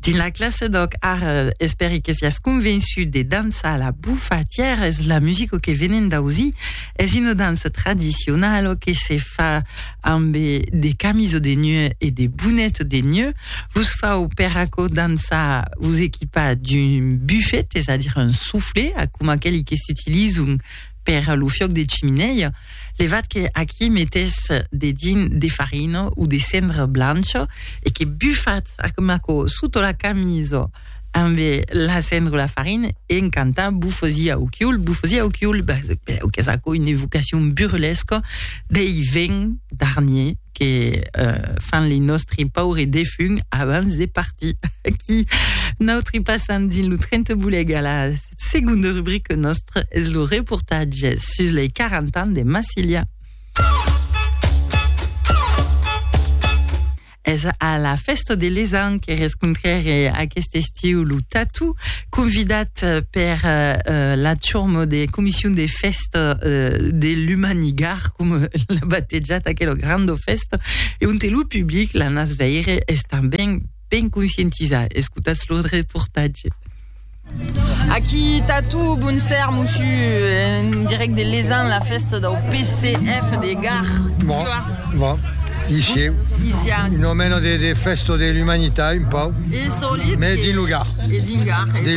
Dins la classe d'òc, ara, espèri que siás convençut de dançar la bufatièra, es la musica que venem d'ausir, es una dança tradicionala que se fa ambe de camisa de neu e de bonet de neu. Vos fau per aquò dançar, vos equipar d'un buffet, es a dire un soufflet, coma aqueli que s'utilizan per lo fiòc de chiminèia, levat que aquí metés dedins de farina o de cendra blancha e que bufats a macò sota la camisa ambe la cendra o la farina e en cantant Bufosi au chiul, bufosi au chiul, qu'es aquò una evocacion burlesca dei vents d'Arnier que fan li nòstri paures defunts abans de partir. Aquí, nòutri passam dins lo tren te boleg a la Segonda rubrica nòstra es lo reportatge sus lei 40 ans de Massilia. Es a la festa de l'Esan que rescontrèré aquest estiu lo Tatu, convidat eh, per eh, eh, la turma de Comissió de Festa eh, de l'Humanigar, com l'ha batejat aquella granda festa, e on té lo public, la nas veire, és tanben ben conscientizar. Escotatz lo reportatge. Aquí Tatu, bon ser, mossu, en direct de Lesan, la festa del PCF de Gar. Bon, bon. Ici, Isias. un omeno de, de festo de l'umanità, un pau. E solit. Mais din lo Gar. E din Gar. De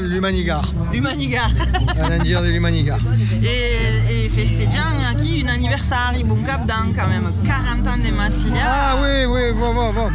l'umanigar. L'umanigar. Un endir de l'umanigar. E, e festejan aquí un anniversari, bon cap d'an, quand même, 40 ans de Massilia. Ah oui, oui, bon, bon, bon.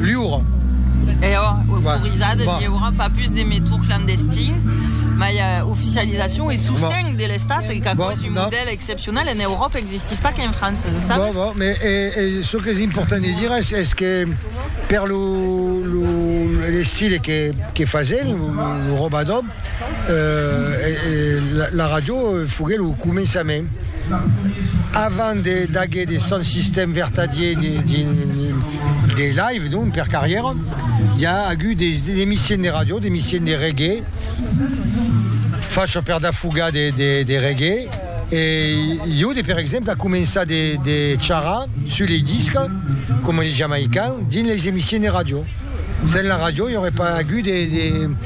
Liura. E ò autorizat de viure pas pus de metòd clandestin, mai oficializacion e sosten de l'Estat e qu'a còs un modèl excepcional en Euròpa existís pas qu'en França, lo sabes? Bon, bon, e çò qu'es important de dire es que per lo l'estil que fasen, lo robador, La ràdio foguèt lo començament, avant d'aguer de son sistèm vertadier de live, non per carrièra, i a agut de emissions de ràdio, de emissions de reggae, fachas per dafugar de reggae, e jo per exemple a començar de charrar sus lei discas, coma de Jamaican, dins leis emissions de ràdio. Sens la ràdio i aurait pas agut de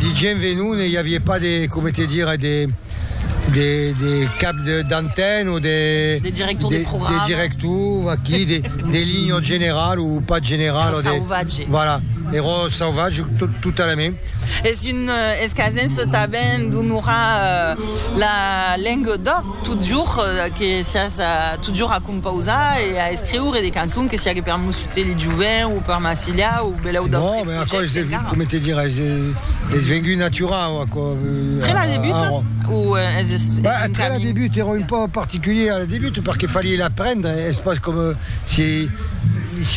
De gent venon e i aviá pas de, coma te dire, de de de cap de d'antenne o de. De director de programa. De director aquí, de de linha en general o pas general. Era sauvatge. Voilà, era sauvatge totalament. Es un escasenc tanben d'onorar la lenga d'òc. Totjorn que siás totjorn a compausar e a escriure de cançons, que siague per Musutèli Joven o per Massiliá o belèu d'autres projèctes. Non, mais aquò es devengut, com te dirai, es vengut naturau, aquò. Tre la debut? Ou es un camin? Tre la debut èra un pauc particulier a la debut, perque falié l'aprendre, es pas com si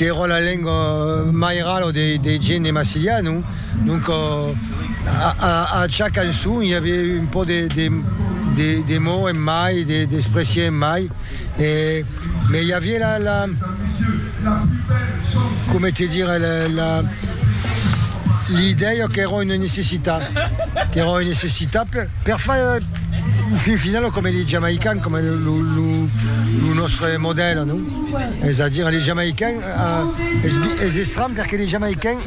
èra la lenga mairala de gent de Massiliá, non? Donc a cha cançon i aviá un pò de mots en mai, d'expressies en mai, mès i aviá la, coma te dire, l'idèia qu'èra una necessitat, qu'èra una necessitat per far, au fin final, coma li Jamaicans, coma lo nòstre modèl, non? Es a dire, li Jamaicans, es estranh perque li Jamaicans,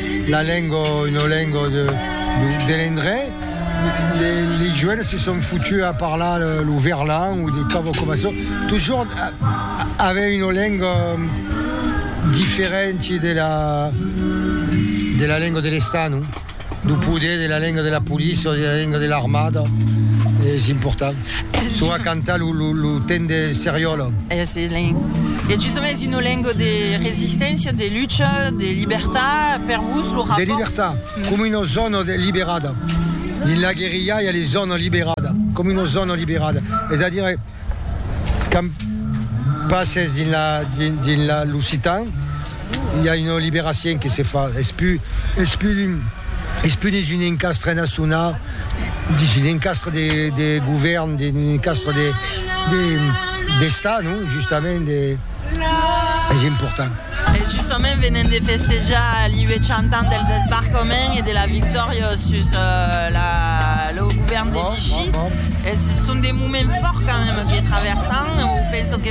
la lengo e no lengo de de l'endrech les les joènes se son foutus a parlar lo verlan o de quavo coma çò toujours aver una lengo diferenti de la de la lengo de l'estat non de poder de la lengo de la police o de la lengo de l'armada es important Çò a cantar lo temps de seriòla. E justament es una lenga de resisténcia, de lucha, de libertat per vos lo rapòrt? De libertat, coma una zòna liberada. Dins la guerrilha i a les zònas liberada, coma una zòna liberada. Es a dire quand passes dins l'occitan I a una liberacien que se fa, es pu, es pu un, es pu dins un encastre naciona, dins un encastre de, de govèrn, dins un encastre de, de, d'Estat, non? Justament de, es important. E justament venem de festejar li 800 ans del desbarcament e de la victòria sus la, lo govèrn de Vichy. Es, son de moments fòrts quand même que traversam, o penso que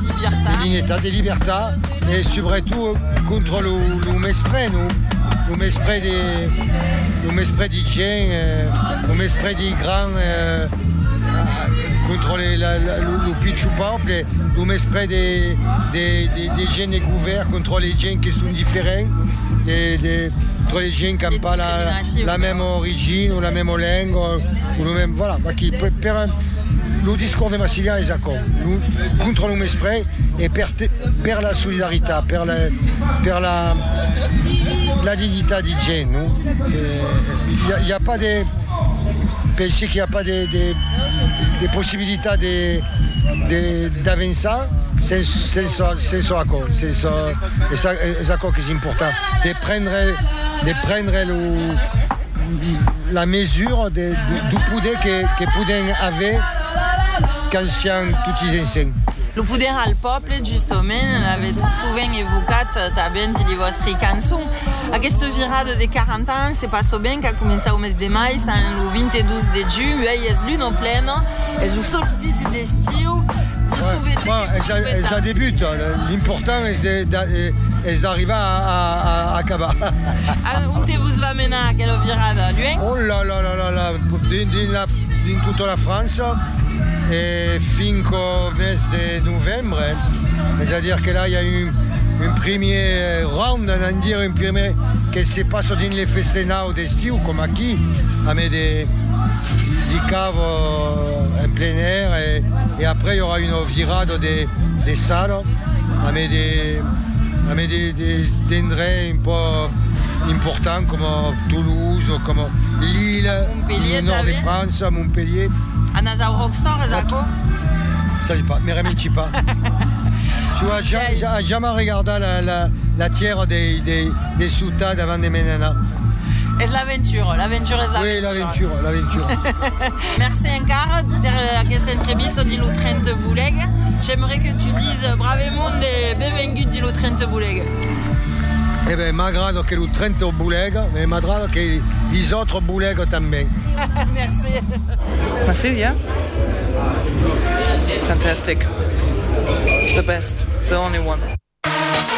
De dignitat, de libertat e subretot contra lo mespre, non? Lo mespre de, lo mespre de gent, lo mespre de grand contra lo pichon pòble, lo mespre de gent de govèrn contra de gent que son diferent, contra de gent qu'an pas la mèma origina, la mèma lenga, lo mèma... Voilà, vaquí, per un... Lo discors de Massilián es aquò. Contra lo mespre e per la solidaritat, per la dignitat de gent, non? I a pas de, pensi qu'i a pas de possibilitat d'avançar sens aquò, es aquò qu'es important, de prendre lo. la mesura de, du poder que, que podem aver quand siam toti ensems. Lo poder al pòble, justament, l'avètz sovent evocat tanben dins li vòstri cançons. Aquesta virada de 40 ans se passa ben qu'a començat au mes de mai, sens lo 22 de junh, uèi es luna plena, es lo solstici d'estiu, vos souvetètz que vos souvetètz. Es la debut, l'important es d'arribar a acabar. Ara, onte vos va menar aquela virada, luenh? Oh, la la la la la, dins dins la dins tota la França e finc au mes de novembre, es a dire que la i a un un primier round, an an dire un primier que se passa dins le festenau d'estiu coma aquí, amé de di cava en plein air e e après i aurà una virada de de sala amé de amé de Des d'endrets un pò importants coma Toulouse o coma Lille, lo nòrd de França, Montpellier. Anas au Rockstar es aquò? Sabi pas, me reminci pas. Su a ja a jamai regardat la la la tièra dei dei de suta davant de me'n anar. Es l'aventura, l'aventura es l'aventura. Oui, l'aventura, l'aventura. Merci encara per aquesta entrevista dins lo tren te volèg. J'aimerais que tu dise bravement de benvengut dins lo tren te volèg. Eh ben, m'agrada que lo tren te volèg, e m'agrada que les autres volèg tanben. Merci. Merci bien. Fantastic. The best. The only one.